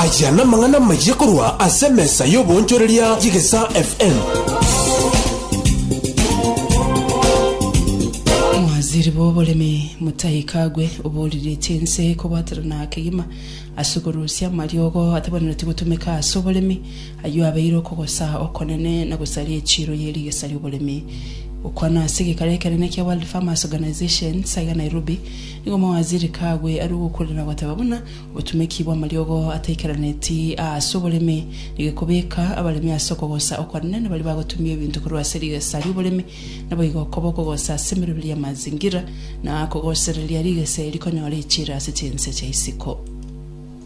Aya namang'ana amayia korwa ase emesa y'oboonchoreria y'Egesaa FM. Omwaziri bw'oboremi Mutahi Kagwe oboriretie ense kobwaterana kegima ase okorusia amariogo atabanenetie gotumeka ase oboremi, ayio abeire okogosa okonene na gosaria echiiro ye rigesa ri'oboremi. Gokwana ase egekaro ekenene kia World Farmers Organization, SAGA Nairobi, Nigo omowaziri kagwe arue gokorera na goteba buna obotumeki bw'amariogo ataikaraneti aase oboremi. Nigo ekobeka abaremi ase okogosa okwanene na baria bagotumia ebinto korwa ase rigesa ri'oboremi, naboigo okoba okogosa ase emeroberi y'amazingira na kogosereria rigesa eri konyora echiira ase chinse chia isiko.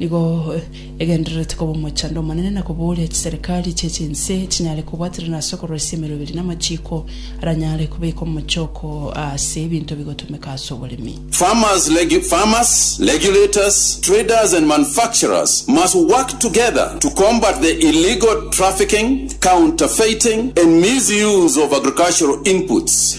Nigo egendererete koba omochando omonene na kobooria chiserikari chie chinse chinyare kobwaterana ase okoroisia emeroberi na amachiiko aranyare kobeeka omochooko ase ebinto bigotomeka ase oboremi. Farmers regu, farmers, regulators, traders and manufacturers must work together to combat the illegal trafficking, counterfeiting and misuse of agricultural inputs.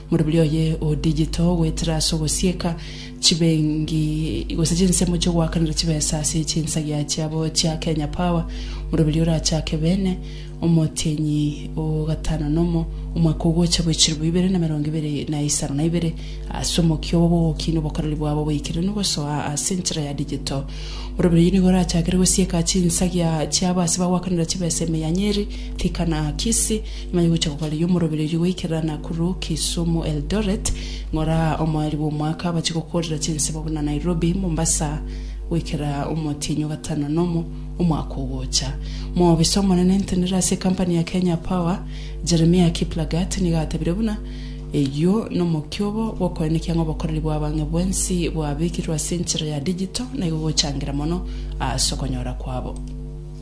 Morobiri oye o digital goetera ase ogosieka chibengi gose chinsemo chiogoakanera chibesa ase chinsagia chiabo chia Kenya Power morobiri orachake bene omotienyi o gatano nomo omwaka ogocha bwe chiribu ibere na merongo ibere na isano na ibere ase omokia obo bw'ogokina obokoreri bwabo boikeranu gosoa ase enchera ya digital. Morobiri oye nigo orachakere gosieka chinsagia chiabo ase bagoakanera chibesa emeyanyeri, Thika na Kisii. Ng'ai gocha kogareyia omorobererio goikerera Nakuru, Kisumu, Eldoret, ng'ora omoerio bw'omwaka abache gokorera chinsemo buna Nairobi, Mombasa, goikera omotienyi o gatano nomo omwaka ogocha. Moobisa omonene entenera ase ekampani ya Kenya Power, Jeremiah Kiplagat nigo atebirie buna eyio nomokio obo gwokoenekia ng'a obokoreri bwa abang'e bwensi bwabekirwe ase enchera ya digital naigo gochangira mono ase okonyora kwabo.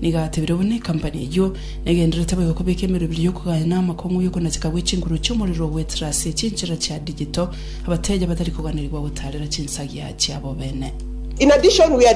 Nigo atebire buna ekampani eyio negenderete boigo kobeka emerobiri y'okogaya na amakong'u y'okonacheka gwe chinguru chi'omorero ogwetera ase chinchera chia digital, abateeja batari koganerigwa gotaarera chinsagia chiabo bene.